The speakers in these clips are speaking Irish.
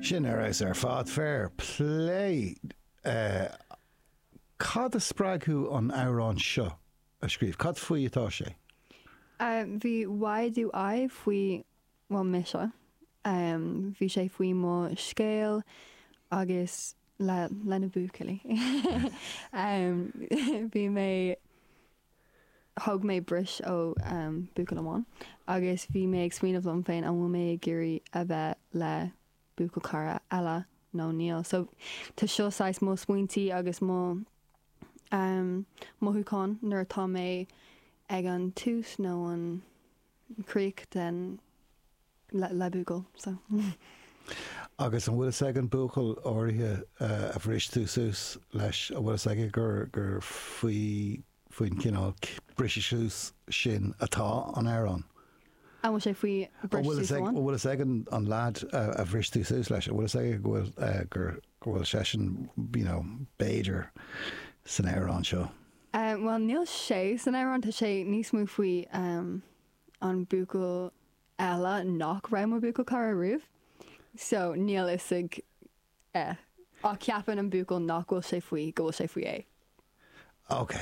Sin a raibh ar fad. Fair play. Cad a spreag thú an amhrán seo a scríobh? Cad faoi atá sé? Bhí Why do I faoi á mise. Bhí sé faoi mo scéal agus leis na buachaillí. Bhí mé thóg mé break ó buachaill amháin agus bhí mé ag smaoineamh liom féin an bhfuil mé ag iarraidh a bheith le buachaillchara eile nó níl. So tá seo saghas mo smaointí agus mo mothúcháin nuair atá mé ag an tús nó an críoch den le buachaill so. Agus an bhfuil fhios ag an buachaill áirithe a bhris tú suas leis, an bhfuil fhios aige gur gur faoi faoin gcineál briseadh suas sin atá an t-amhrán? An bhfuil sé faoi bhriseadh suas amháin? An bhfuil fhios ag an leaid a bhris tú suas leis, an bhfuil fhios aige go bhfuil gur go bhfuil seisean you know b'fhéidir san amhrán seo? Em bhuel níl sé san amhrán, tá sé níos mó faoi em an buachaill eile nach raibh mo bhuachaillchara riamh. So níl fhios aige ach ceapann an buachaill nach bhfuil sé faoi go bhfuil sé faoi é. Ok.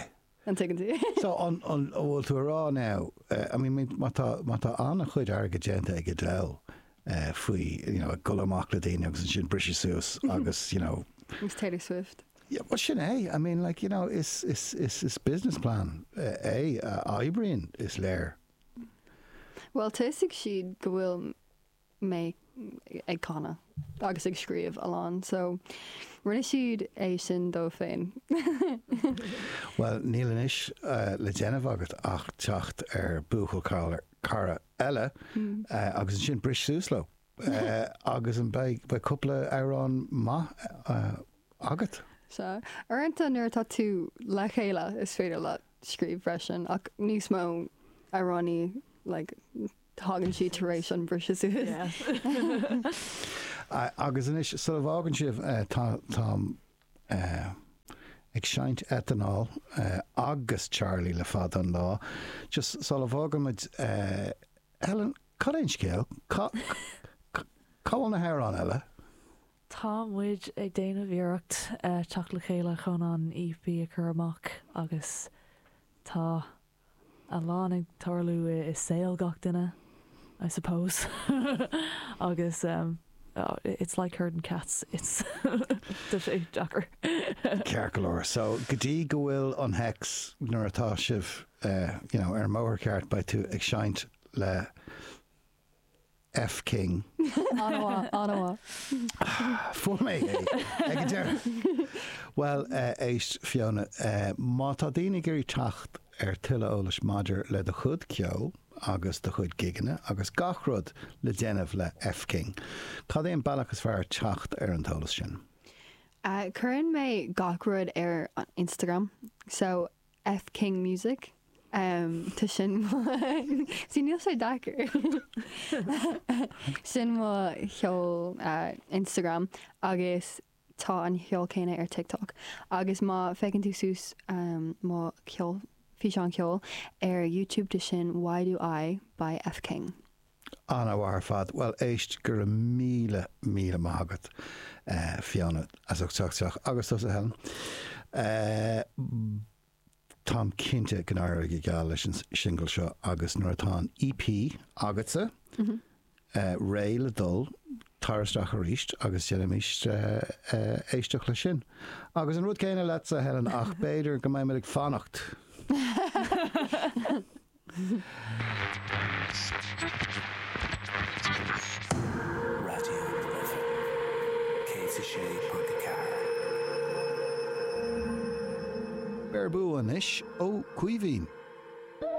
An dtuigeann tú? So an an an bhfuil tú a rá now eh I mean mean má tá má tá an-chuid airgid déanta ag Adele faoi you know ag goil amach le daoine agus ansin briseadh suas agus you know Agus Taylor Swift. Yeah bhuel sin é, I mean like you know is is is is business plan é a oibríonn is léir. Bhuel tá fhios acu go bhfuil mé ag canadh agus ag scríobh a lán so rinne siad é sin dóibh féin. Bhuel níl anois le déanamh agat ach teacht ar buachaillchara eile agus ansin bris suas leo agus an beidh beidh cúpla amhrán maith agat. Sea, uaireanta nuair atá tú le chéile is féidir leat scríobh freisin ach níos mó amhránaí like thagann siad tar éis an briseadh suas. Agus anois sula bhfágann sibh tá mé ag seinnt Eitleán agus Charlie le fada an lá just sula bhfágann muid Ellen cad é an scéal? Cá bhfuil na hamhráin eile? Tá muid ag déanamh iarracht teacht le chéile chun an EP a chur amach agus tá a lán ag tarlú i saol gach duine, I suppose, agus it's like herding cats, it's tá sé deacair. Ceart go leor, so go dtí go bhfuil an hex, nuair atá sibh you know ar an mbóthar ceart beidh tú ag seinnt le F King. An-mhaith, an-mhaith. Fuair mé é ag an deireadh! Bhuel, éist Fiona, má tá daoine ag iarraidh teacht ar tuilleadh eolais maidir le do chuid ceoil agus do chuid gigeanna agus gach rud le déanamh le F King, cad é an bealach is fearr teacht ar an t-eolas sin? Cuireann mé gach rud ar an Instagram, so F King Music Tá sin mo sea níl sé deacair Sin mo sheol Instagram agus tá an sheol céanna ar TikTok agus má féachann tú suas mo físeán ceoil ar YouTube tá sin Why Do I by F King. An-mhaith ar fad. Bhuel éist go raibh míle míle maith agat Fiona as ucht teacht isteach agus tusa Helen. Táim cinnte go n-éireoidh go geal leis an singil seo agus nuair atá an EP agatsa réidh le dul tar isteach arís agus déanfaimid éisteacht leis sin. Agus an rud céanna leatsa Helen ach b'fhéidir go mbeimid ag fanacht. Raidió na Gaillimhe, 106.4. Beir bua anois ó Caoimhín.